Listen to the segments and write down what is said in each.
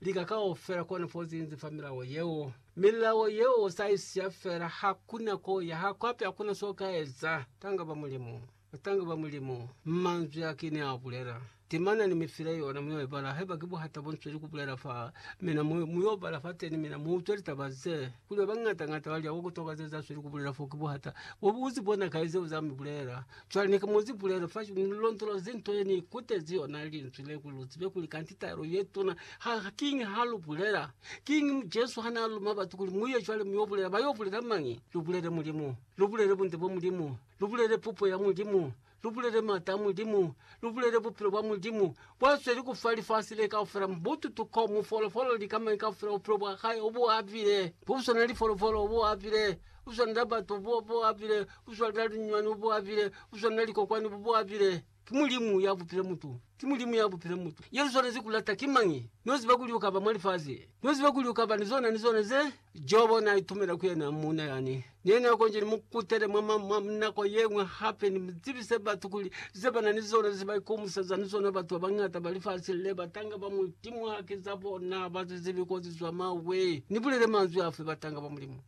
lika kaufela kona fo zinzi fa milao yeo. Milao yeo sa isiya fela hakuna ko ya hako hape hakuna so ka eza. Tanga ba Mulimu. Batanga ba Mulimu. Manzwi a ki ne a bulela. Timana ni mi file yona mu yo ibala haiba ki buhata bo nzweli kubulela fa mina mu, mu yo bala fateni mina mu utwe litaba ze kuli ba bañata-ñata ba lya ko kutokazeza zweli kubulela fo ki buhata bo bu uzi bona kai zeo za mi bulela. Cwale ne ki muzi pulelo fa ni londola zinto ye ni kutezi yona linzwi le, kuli lu zibe kuli kanti taelo ye tuna ha kiñi ha lu bulela. Kiñi Jesu ha na luma batu kuli, Mu ye cwale mu yo bulela? Ba yo bulela mañi? Lu bulele Mulimu. Lu bulele bunde bwa Mulimu. Lu bulele pupo ya Mulimu. Lu bulele mata a Mulimu. Lu bulele bupilo bwa Mulimu. Kwa sweli ku fa lifasi le kaufela mubututu ko mu folofolo li kamañi kaufela bupilo bwa hae o bu apile, ku swana li folofolo o bu apile, ku swana na batu bo bu apile, ku swana na linyuani o bu apile, ku swana na likokwani bo bu apile. Ki Mulimu ya bupile mutu. Ki Mulimu ya bupile mutu. Ye lu swanezi ku lata ki mañi? No ziba kuli u ka ba mwa lifasi. No ziba kuli u ka ba ni zona ni zona ze Jobo na itumela ku yena muuna yani. Ne ni akonzhi ni mu kutele mwa nako yeñwi hape, ni mu zibise batu kuli ze ba na ni zona ze ba ikomuseza ni zona batu ba bañata ba lifasi le, batanga ba Mulimu haki za bona, ha ba zizibi ko zi zwa mawe. Ni bulele manzwi afi? Batanga ba Mulimu.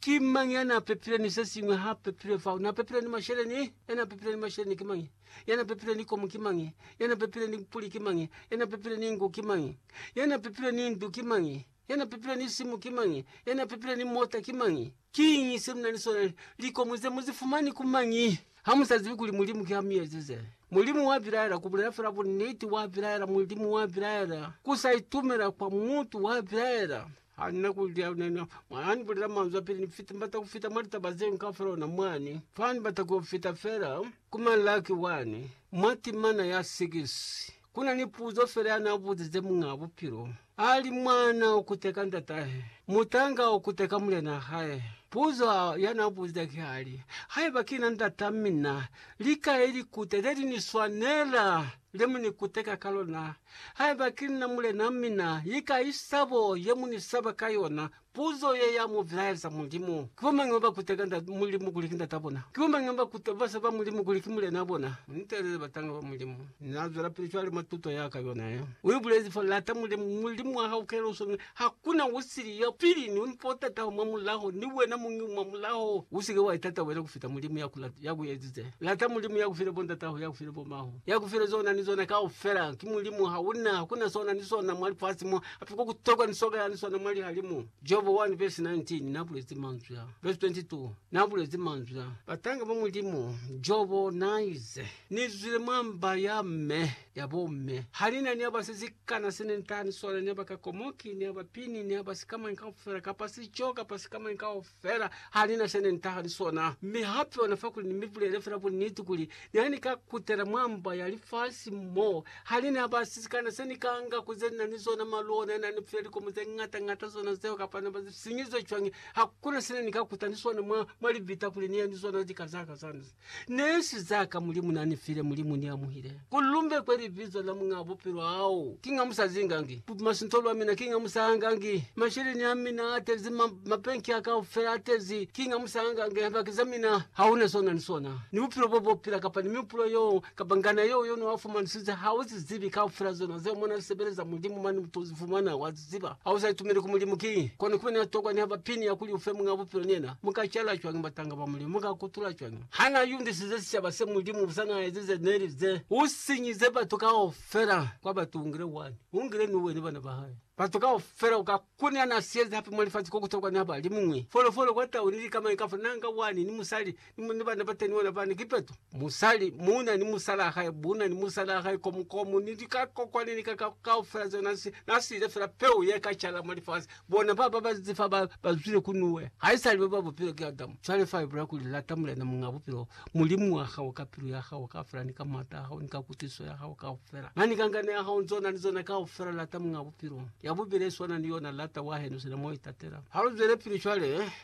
Ki mañi ya na pepile ni se siñwi ha pepile fao? Na pepile ni masheleni? Ya na pepile ni masheleni ki mañi? Ya na pepile ni komu ki mañi? Ya na pepile ni puli ki mañi? Ya na pepile ni ngu ki mañi? Ya na pepile ni ndu ki mañi? Ya na pepile ni simu ki mañi? Ya na pepile ni mota ki mañi? Kiñi se mu na ni sona? Likomu ze mu zi fumani ku mañi? Ha mu sa zibi kuli Mulimu ki ha mu ezize. Mulimu wa bilaela, ku bulela fela buniti, wa bilaela, Mulimu wa bilaela. Ku sa itumela kwa mutu, wa bilaela. Ha ni na ku li ha na, mwa ha ni bulela manzwi a pili, ni fita, ni bata ku fita mwa litaba zenu kaufela ona mwani. Fa ni bata ku fita fela, ku Malaki 1, mwa timana ya 6, ku na ni puzo fela ya na buzize Muñaa Bupilo. Ali mwana o kute ka ndatahe, mutanga o kute ka mulena hae. Puzo ya na buza ki hali, Haiba ki na ndata mina, likai likute le li ni swanela le mu ni kuteka ka lona? Haiba ki na mulena mina, likai sabo ye mu ni saba ka yona? Puzo ye ya mu bilaeza Mulimu. Ki bo mañi baba kuteka nda Mulimu kuli ki Ndata bona? Ki bo mañi baba kuta bafsa ba Mulimu kuli ki Mulenaa bona? Nitelele batanga ba Mulimu. Na zwelapili cwale mwa tuto ya ka yona ye. U ibulezi fa, Lata Mulimu, Mulimu wa hao kaela usoni. Hakuna u sili ya pili ni mpo o tataho mwa mulaho, ni wena muñi u mwa mulaho. U si ke wa itata wena kufita Mulimu ya ku lata, ya ku ezize. Lata Mulimu ya ku file bo ndat'aho, ya ku file bo ma'ho, ya ku file zona ni zona kaufela. Ki Mulimu, hauna, hakuna sona ni sona mwa lifasi mo. Hape kwa ku tokwa nisoka ya liswana mwa lihalimu, Jobo 1 vesi 19 n'a bulezi manzwi a. Vesi 22, N'a bulezi manzwi a. Batanga ba Mulimu, Jobo n'a ize, Ni zwile mwa mba ya m'e, ya bo m'e. Ha ni na ni haba se si kana se ne ni taha ni sona, ni haba ka komoki, ni haba pini, ni haba sikamañi kaufela, kapa sico, kapa sikamañi kaufela. Fela ha ni na se ne ni tahali sona. Mi hape ona fakuli ni mi bulele fela buniti kuli, ne ni ka kutela mwa mba ya lifasi mo ha ni na ba sisikana. Se ni ka nga ku ze ni na ni zona, malu ona na ni file likomo ze ngata ngata zona zeo, kapa na ba sinyizwe cwañi, hakuna se ne ni ka kuta ni sona mwa, mwa libita kuli ni ye ni zona lika zaka zani. Nesu zaka Mulimu nanifile, Mulimu niamuhile. Kulumbe kwe libizo la Muñaa Bupilo hao, kinga musazingangi. Busintolo amina kinga musahangangi. Masheleni amina atezi, ma, mabenki a kaufela atezi, kinga musahangangi. Lihaki zamina hauna sona ni sona, ni bupilo bo bopila, kapa ni mihupulo yo, kapa ngana yeo yo noafumanisize, hauzizibi, kaufela zona zeo mona sebeleza Mulimu mani mutozifumana, wa ziba. Ziba, ha u sa itumeli ku Mulimu, ki kono kibe na tokwa niha ba pinia kuli ufe Muñ'a Bupilo ni yena. Mu ka cala cwañi batanga ba Mulimu? Mu ka kutula cwañi ha na yundisize sicaba se Mulimu busa na ezize Neli ze? U sinyize batu kaufela kwa batu u ngile wani, u ngile ni uwe ni bana ba hae. Batu kaufela u ka kuniha na sieze hape mwa lifasi ko ku tokwa niha ba li muñwi. Folofolo kwa tau ni lika mañi kaufela na nga wani ni musali Ni ni bana bateni bona bani kipeto musali muna ni musala hae buna ni musala hae komu komu ni dika kokwani ni kaka kaufela zeo nasi nasile fela peu ye ka chala mwa lifasi bona ba ba bazi fa ba bazwile kunuwe haisali ba ba bupilo ki Adamu chwale fa ibula kuli lata mulena munga bupilo mulimu wa hao ka pilu ya hao kaufela ni ka mata a hao ni ka kutwisiso ya hao kaufela mani ka ngana ya hao nzona ni zona kaufela lata munga bupilo ya bubili eswana ni yona lata wa henu sina mo itatela ha lu zwele pili chwale